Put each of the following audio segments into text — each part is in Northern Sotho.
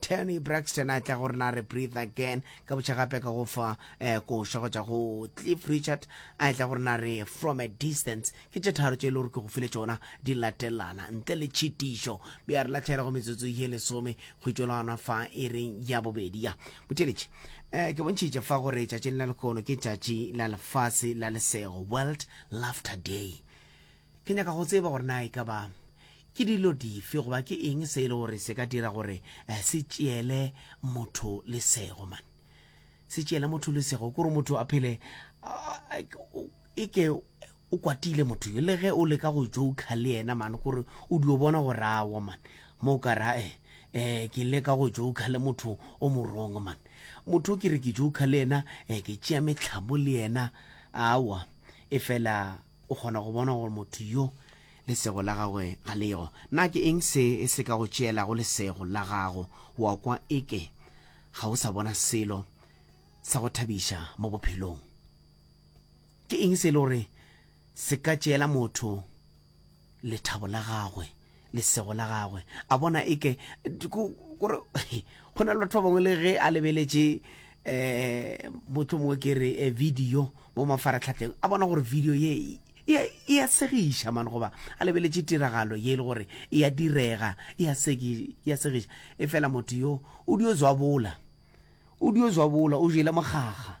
Tony Braxton a tla go rena a re breathe again ka botšha gape ka go fa eh, koša go tša go Cliff Richard a tla go rena a re from a distance ke tše tharo tše e le gore ke go file tšona di latelana ntle le tšhitišo be a re latlhela go metsotso ye lesome go itšo la gona fa e reng ya bobedi ya botheletše eh, ke bontšhitše fa gore tšatši le na lekono ke tšatši la lefase la lesego world laughter day Ke nyaka go tseba gore na e ka ba ke dilo dife goba ke eng se e le gore se ka dira gore eh, se tšeele motho lesego man se tšeele motho lesego kore motho a phele e ke o kwatile motho yo le ge o leka go joka le yena man kore o dio bona go rawo man mo o ka ra e um ke leka go joka le motho o morong man motho o ke re ke joka le yena um ke tšea metlhamo le yena awa e fela o kgona go bona gore motho yo lesego la gagwe ga lego na ke eng se e se ka go tšeelago lesego la gago wa kwa eke ga o sa bona selo sa go thabiša mo bophelong ke eng se e le gore se ka tšeela motho lethabo la gagwe lesego la gagwe a bona e ke gore go na le batho ba bangwe le ge a lebeletše um motho mongwe ke re eh, video mo mafaratlhatlheng a bona gore video ye e, e, e a segiša mane goba a lebeletše tiragalo ye e le gore e a direga e a segiša e fela motho yo o dio zwabola o dio zwabola o jele mokgakga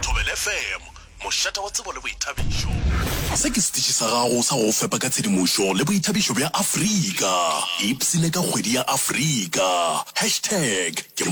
Thobela FM, mošata wa tsebo le boithabišo. Se ke setiši sa gago sa go go fepa ka tshedimošo le boithabišo bja Afrika. Ipsine ka kgwedi ya Afrika. Hashtag ke.